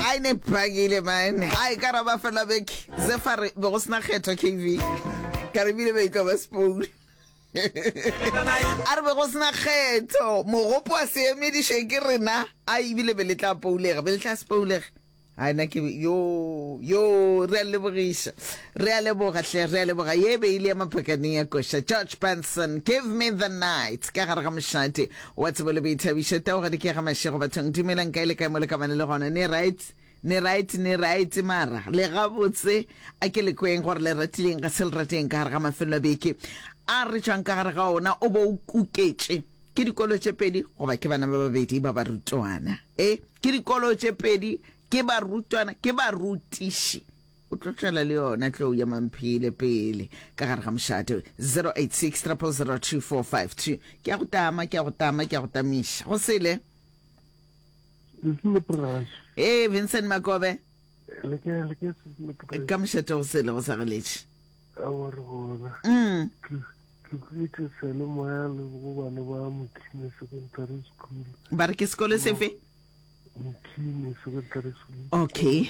ai ne pakile man ai ka raba fela beke se fa re be go sena kgetho kv ka re bile beitlo ba spoon a re be go sena kgetho mogopo wa se emediše ke rena a ebile be le tla poulega be le tla se poulega a na ke yo yo re a lebogiša Re a leboga hle, re a leboga. Ye e be e le ya Maphakane ya koša. George Benson, Give me the night, ka gare ga mošate wa tsebo le boithabišo. Tau ga di ke ga mašego bathong. Dumelang, kae le kae mo le ka bane le gona. Ne right? Ne right, ne right, mara le gabotse. A ke le kweng gore le ratileng ga se le rateng ka gare ga mafelelo a beke a re tšwang ka gare ga ona. O bo o kuketše ke dikolo tše pedi goba ke bana ba babedi ba barutwana. E, ke dikolo tše pedi, ke barutwana, ke barutiši. o tlo tšwela le yona tlou ya mamphele pele ka gare ga mošate 0860002452 ke a go tama ke a go tama ke a go tamiša go sele ee vincent makobe ka mošate go sele go sa galetše mm. ba re ke sekolo sefe okay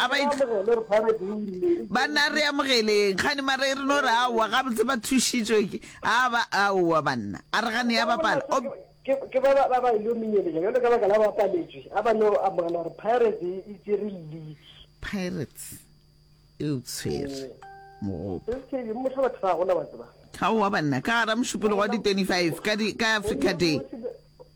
a ba itla ba nna re amogeleng kgane mare re no re aowa gabotse ba thušitšwe ke a ba aowa banna a re gane ya bapala ke ba ba ba ile menyeletša jalo ka baka la ba paletswe a ba no amogela gore pirates e, e tsere league pirates e o tshwere mogopo motho batho ga gona ba tseba ga wa banna ka gara mošupologo wa di-25 ka africa day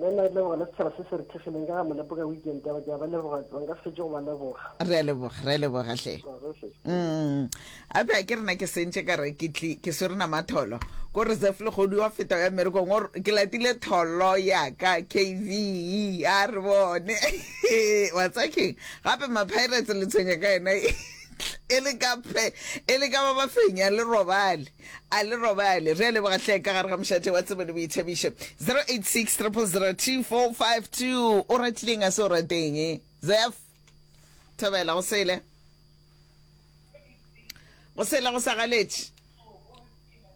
Nna nna ke leboga le setshaba se se re thekgileng ka ga molepo ka weekend ya go ke a ba leboga tlo nka se fetše go ba leboga. Re a leboga, re a leboga hle. Mm. A be a ke rena ke sentše ka re ke tli ke swere nama tholo ko reserve le kgodu wa feta ya merekong or ke latile tholo ya ka KV a re bone wa tsa keng gape ma pirates le tshwenya ka yena e le ka phe e le ka ba ba fenya le robale. A le robale. Re a leboga hle ka gare ga mošate wa tsebo le boithabišo. 0860002452 O ratileng a se o rateng? Zef Thobela go sele go sele go sa galetše.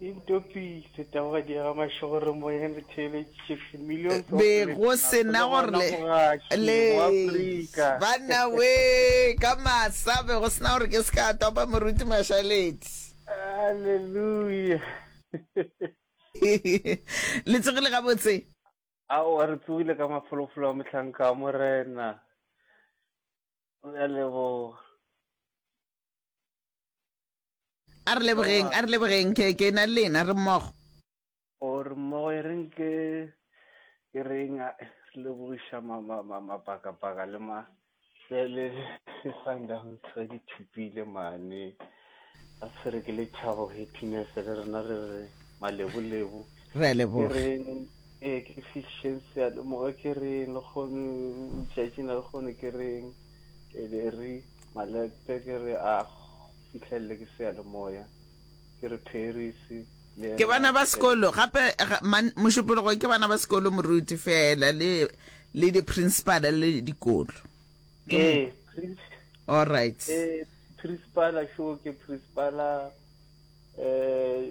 Intopi se taboga diega mašogoro moyeng re theeletše Chiefs millions of be go sena gore le banna we ka masa be go sena gore ke se ka topa moruti mashaleti Hallelujah. Le tsogile gabotse? Ao, re tsogile ka mafolofolo a mohlanka a morena. Re a leboga. A re lebogeng, a re lebogeng, ke ke na le lena re mmogo. or mmogo e reng ke ke reng a le boiša mapakapaka le ma le le le sundowns re di thupile mane a tshwere ke lethabo happiness le rena re re malebolebu re a leboga ee ke fiction sealemoga ke reng le kgone tšatšing le kgone ke reng e be re malete ke re a fitlhelele ke sealemoya Ke re Paris le yena. Ke bana ba sekolo gape man mošupologo ke bana ba sekolo moruti fela le le di principal le dikolo ke ee all right ee principal šo ke principal eh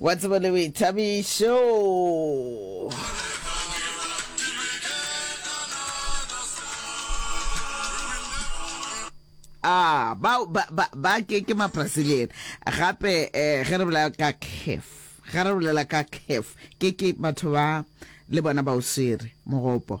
Wa tseba le boithabišo. Ah, ba ba ba ba ke ke mabrasilian gape eh ge re bolela ka caf ga re bolela ka caf ke ke batho ba le bona ba o swere mogopo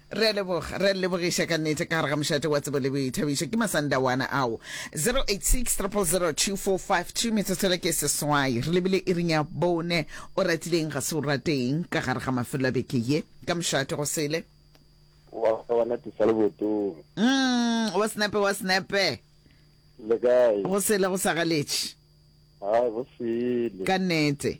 Re a leboga, re a lebogiša ka nnete ka gare ga mošate wa tsebo le boithabišo. Ke masandawana ao. 0860002452 metsotso le ke seswai. Re lebile iring ya bone. O ratileng ga se o rateng ka gare ga mafelo a beke ye ka mošate go sele. Wa wa natisa le botong. Mm, wa snape wa snape. Le kae? Go sele go sa galetše. Ha go sele. Ka nnete.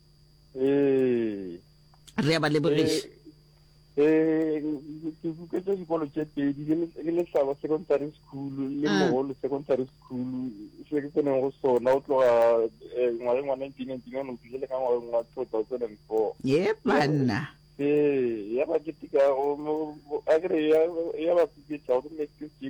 ee re ba lebogiša eh, eh ke tse dikolo tse pedi le lesaba secondary school le ah. mogolo secondary school se ke tseneng go sona o tloga eh, ngwageng wa nineteen nineteen one o fitlhele ka ngwageng wa two thousand and four ye banna ee ya ba keteka a kere ya ba fifetsa go mme ke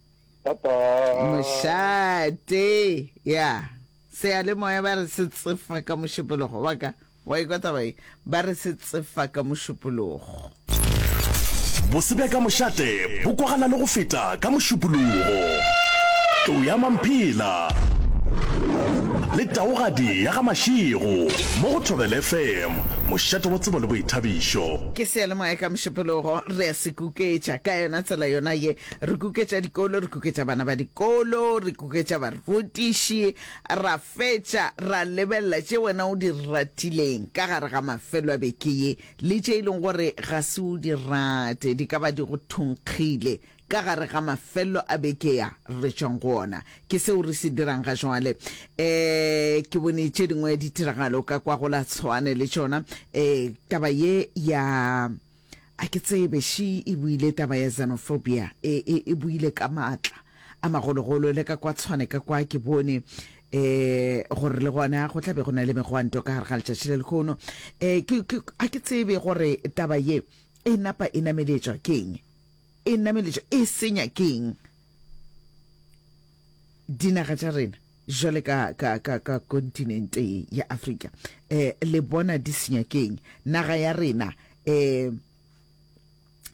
Bye bye. Mošate, ya, seyalemoya ba re se tsefa ka mošupologo, wa ka, wa ikwa taba ye, ba re se tsefa ka mošupologo. Bose bja ka mošate bo kwagala le go feta ka mošupologo. Tlou ya Mamphela le taogadi ya ga Mašego mo go Thobela FM, mošate wa tsebo le boithabišo. Ke seyalemoya ka mošupologo, re a se kuketša ka yona tsela yona ye. Re kuketša dikolo, re kuketša bana ba dikolo, re kuketša barutiši, ra fetša ra lebelela tše wena o di ratileng ka gare ga mafelo a beke ye le tše e leng gore ga se o di rate, di ka ba di go thunkgile ka gare ga mafelo a beke ya re tšwang go ona. Ke seo re se dirang ga jwale. Um ke bone tše dingwe ditiragalo ka kwa go la Tshwane le tšona, um taba ye ya A ke tsebe, Shi e buile taba ya xenophobia, e, e, e buile ka maatla a magologolo, le ka kwa tshwane ka kwa, ke bone e, gore le gona go tla be go na le megwanto ka gare ga letšatši le lekhono. E, ke, ke, a ke tsebe gore taba ye e napa e nameletšwa keng, e nameletšwa, e senya keng. Dinaga tša rena, jwale ka, ka, ka, ka kontinente ye ya Afrika, eh, le bona di senyakeng. Naga ya rena, eh,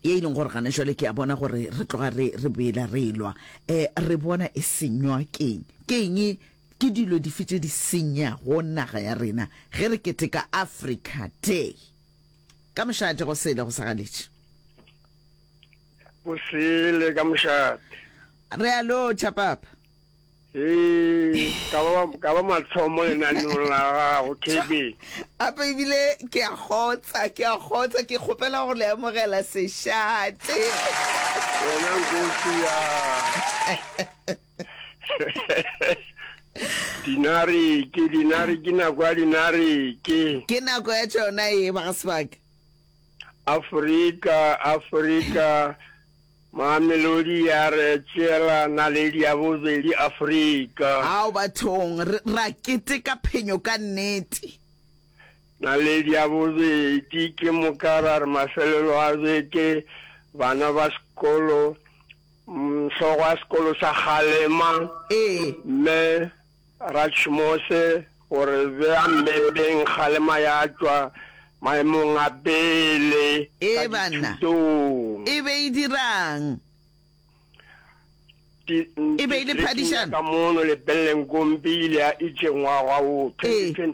ye e leng gore gana jwale ke a bona gore re tloga re re boela re elwa eh, re bona e senywa keng keng ke dilo dife tse di senya go naga ya rena ge re keteka africa day ka mošaatego sele go sa galetše O sele ka mošate. Re a lotšha, Papa. Ee, ka ba, ka ba mathomo lenaneong la gago, Kevin. Apa ebile ke a kgotsa, ke a kgotsa, ke kgopela go le amogela sešate. Wena nkosi ya. dinareke, dinareke, nako ya dinareke. Ke nako ya tšona e, ba ga sebaka. Afrika, Afrika, Mamelodi ya re tšeela naledi ya bobedi Afrika. Ao bathong, re, ra keteka phenyo ka nnete. Naledi ya bobedi, ke moka ra re mafelelo a beke, bana ba sekolo, mm, hlogo ya sekolo sa kgalema, Ee. mme, Ratšhmose o re bea mmepeng kgalema ya tšwa maemong a pele ka dithutong. E be e dira'ng? E be e le phadišano. Ka mono lepelleng Kompi ile ya itšengwagwa o 2020.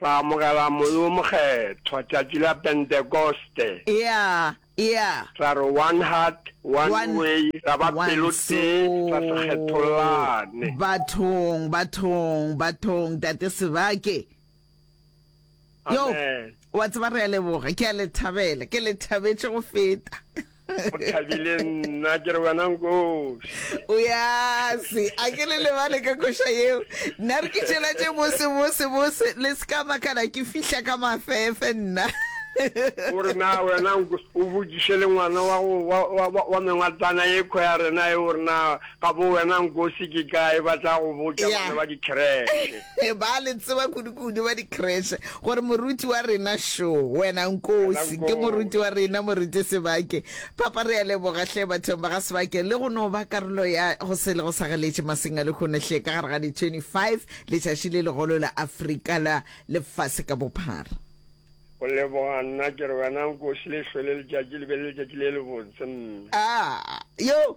Ra amogela Moya wo Mokgethwa tšatši la Pentekoste. Eya, eya. Ra re, One heart, one, one way, ra ba pelotee, ra se kgethollane. Bathong, bathong, bathong, Tate Sebake. Yo, wa tseba, re a leboga. Ke a le thabela. Ke le thabetše go feta. O thabile nna ke re wena nkoši. O ya se, a ke le lebale ka koša yeo. Nna re ke tšelatše bose bose bose le se ka makana ke fihla ka mafefe nna. O re na wena nkoši o botšiše le ngwana wa go wa wa wa mengwatlana ye kho ya rena e o re na Ga bo wena Nkosi ke kae ba tla go botša Yeah. bana ba dikhereshe. ba le tseba kudukudu ba dikreshe gore moruti wa rena šo wena nkosi ke moruti wa rena moruti sebake papa re a leboga hle bathong ba ga sebake le go no ba karolo ya go se le go sagaletše maseng a lekgone hle ka gare ga di-25 letšatši le legolo la afrika la lefase ka bophara Go leboga nna ke re wena Nkosi le hlwele letšatši le be le letšatši le le botse mme. a yo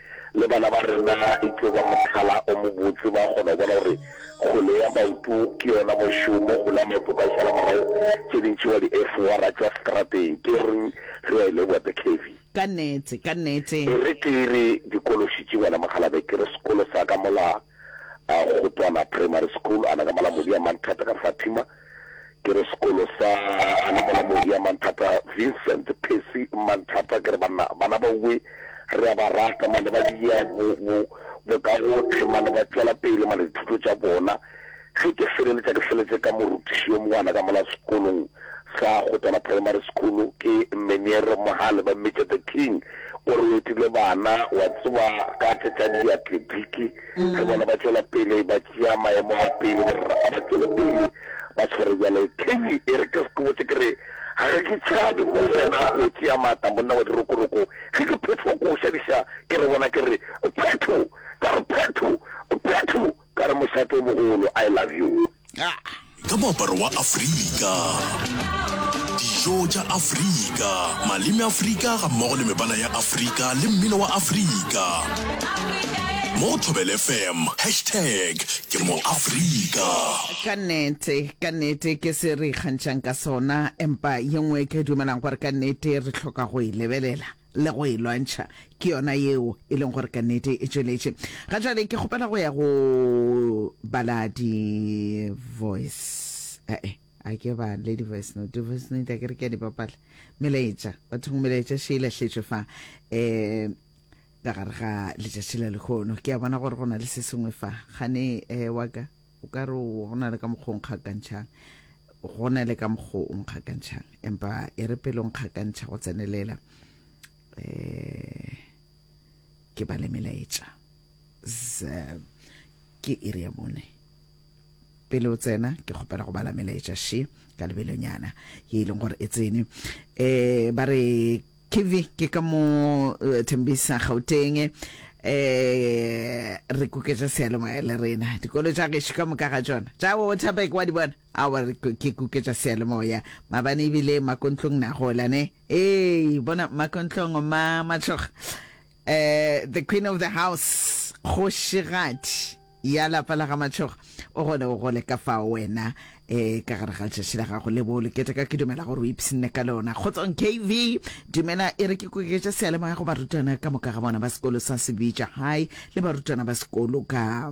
Le bana ba rena e tlo ba mohlala o mobotse. Ba kgona go bona gore kgole ya maoto ke yona mošomo. Kgole ya maoto o ka e šala morago, tše dintši wa di efora tša strateng. Ke reng ge wa e leboa the KV? Ka nnete, ka nnete. E re ke re dikološitše wena mokgalabje, ke re sekolo sa ka mola Kgotwana Primary School, ana ka mola Modiamang Thata ka Fatima, ke re sekolo sa Anamolamohi ya Manthata Vincent Percy Manthata ke re bana bana ba uwe re a ba rata mane ba dia bo bo bo ka go tlhe mane ba tšwela pele mane dithuto tša bona ge ke feleletša ke feletse ka morutiši yo mongwana ka mola sekolong sa Kgotana Primary School ke Meniere Mohale ba mmitša the king o re o etile bana wa tseba ka tše tša diatletiki Le bona ba tšwela pele ba tšea maemo a pele, ba re a ba tšwele pele ba tshwere bjale. Kenny e re, Ke se ke botse ke re, Ga re ke tšhabe mo wena o tšea maatla, monna wa dirokoroko. Ge ke phethwa ko o šadiša, ke re bona ke re, Phetho! Ka re, Phetho! Phetho! Ka re, Mošate o mogolo, I love you. Ka moaparo wa Afrika, dijo tša Afrika, maleme Afrika ga mmogo le mebala ya Afrika le mmino wa Afrika. Mo go Thobel FM, hashtag ke mo Afrika. ka nnete ka nnete ke se re ikgantšhang ka sona empa ye nngwe ke dumelang gore ka nnete re tlhoka go e lebelela le go e lwantšha, ke yona yeo e leng gore ka nnete e tšweletše. Ga jale ke kgopela go ya go bala di-voice, ee, a ke ba le di-voice note, di-voice note a ke re ke a di bapala, melaetša, bathong melaetša še e lahletšwe fa, um ka gare ga letšatši la lekhono. Ke a bona gore go na le se sengwe fa, gane um wa ka. O ka re o go na le ka mokgwa o nkgakantšhang, go na le ka mokgwa o nkgakantšhang, empa e re pele o nkgakantšha go tsenelela, um ke ba le melaetša ke iri ya bone pele o tsena ke kgopela go bala melaetša she ka lebelonyana ye e leng gore e tsene um ba re Kivi ke ka mo Thembisa Gauteng eh re kuketša sealemoya le rena dikolo tša gešo ka moka ga tšona tša Waterberg wa di bona awa re ke kuketša sealemoya mabane ebile makontlong na gola ne ee bona makontlong ma matšhoga Eh, the queen of the house, kgošigadi ya lapa la ga Matšhoga, o gone o gole ka fao wena eh ka gare ga letšatši la gago le bo le keteka. Ke dumela gore o ipshinne ka lona. Kgotsong KV, dumela e re ke koketša seyalemoya go barutwana ka moka ga bona ba sekolo sa Sebitša High le barutwana ba sekolo ka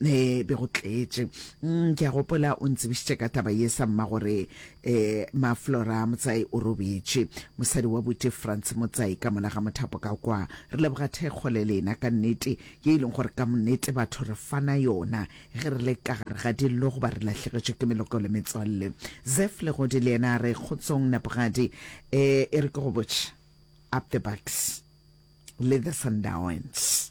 e be go tletše mm, ke a gopola o ntsebišitše ka taba ye sa mma gore um maflora motsai o robetše mosadi wa bute france motsai ka mola ga mothapo ka kwa re leboga thekgo le lena ka nnete ye e leng gore ka monnete batho re fana yona ge re le ka gare ga dillo goba re lahlegetšwe ke meloko le metswalle zef le godi le yena a re kgotsong napogadi um e re ke go botše up the bucks le the sundowns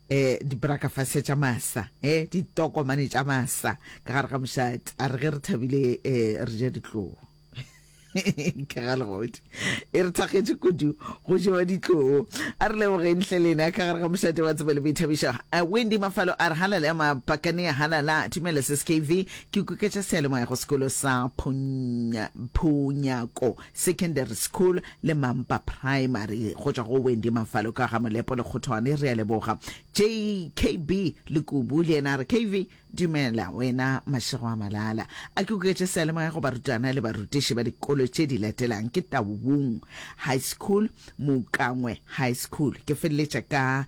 E, dibrakafase tša masa, e, ditokomane tša masa ka gare ga mošate. A re ge re thabile, e, re ja ditloo. ka ga legodi e re thakgetše kudu go jewa ditloo a re lebogeng hle lena ka gare ga mošate wa tsebo le boithabišo wendy mafalo a re halale ya mapakane ya halala tumele skv ke kuketša sealemoya go sekolo sa phunyako Secondary School le Mampa Primary go tšwa go Wendy Mafalo ka ga Molepo le Kgothoane. Re a leboga. JKB Lekubu le yena a re, KV, dumela wena Mašego a Malala. A ke o ketše seyalemoya go barutwana le barutiši ba dikolo tše di latelang, ke Taung High School, Moukangwe High School. Ke feleletša ka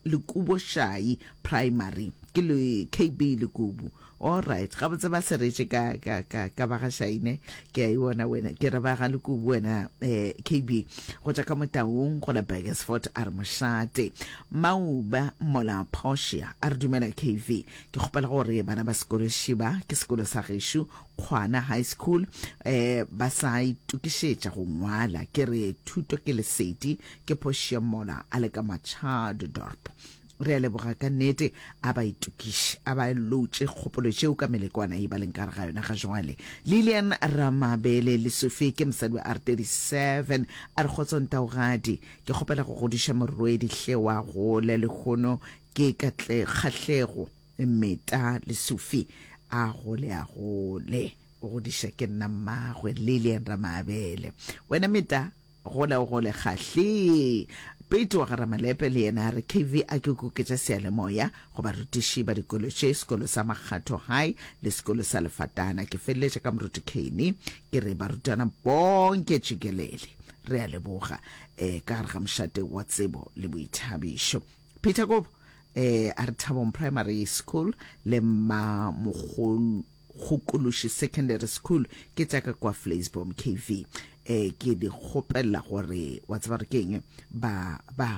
Lekubošai Primary. Ke le KB Lekubu. All right, gabotse ba seretše ka, ka, ka, ka ba ga Shaine, ke a e bona wena, ke re ba ga Lekubu wena, eh, KB, go tša ka motaung, go la Burgersfort, a re mošate. Mauba, mola Portia, a re dumela KV, ke kgopela go re bana ba sekolo Šiba, ke sekolo sa gešo, Kgwana High School, eh, ba sa itokišetša go ngwala, ke re thuto ke lesedi, ke Portia mola a le ka Machadodorp. Re a leboga ka nnete. A ba itokiše, a ba lotše kgopolo tšeo ka melekwana ye ba leng ka gare ga yona ga joale. Lilian Ramabele, Lesofe, ke mosadi wa R 37. A re, Kgotso ntaogadi. Ke kgopela go godiša morwedi hle wa gole lehono ke Katle, Kgahlego Meta Lesofe. A gole, a gole. O godiša ke nna mmagwe, Lilian Ramabele. Wena Meta? Gola o gole kgahlii. Pete wa ga Ramalepe le yena a re KV a ke kuketša seyalemoya go barutiši ba dikolo tše, sekolo sa Makgatho High le sekolo sa Lefatana. Ke feleletša ka moruti Kane ke re barutwana bonke tšikelele. Re a leboga. Um ka gare ga mošate wa tsebo le boithabišo. Peter Kobo um a re Thabong Primary School le Mmamogolo. go Kološi Secondary School, ke tša ka kwa Vleisboom, KV. E, ke di kgopella gore, wa tseba gore ke eng, ba, ba,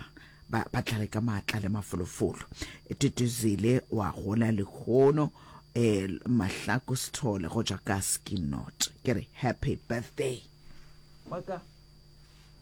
ba, ba tlale ka maatla le mafolofolo. Tutuzile wa gola lehono, e, Mahlaku Sithole go tšwa ka Skinot. Ke re, Happy Birthday. Wa ka.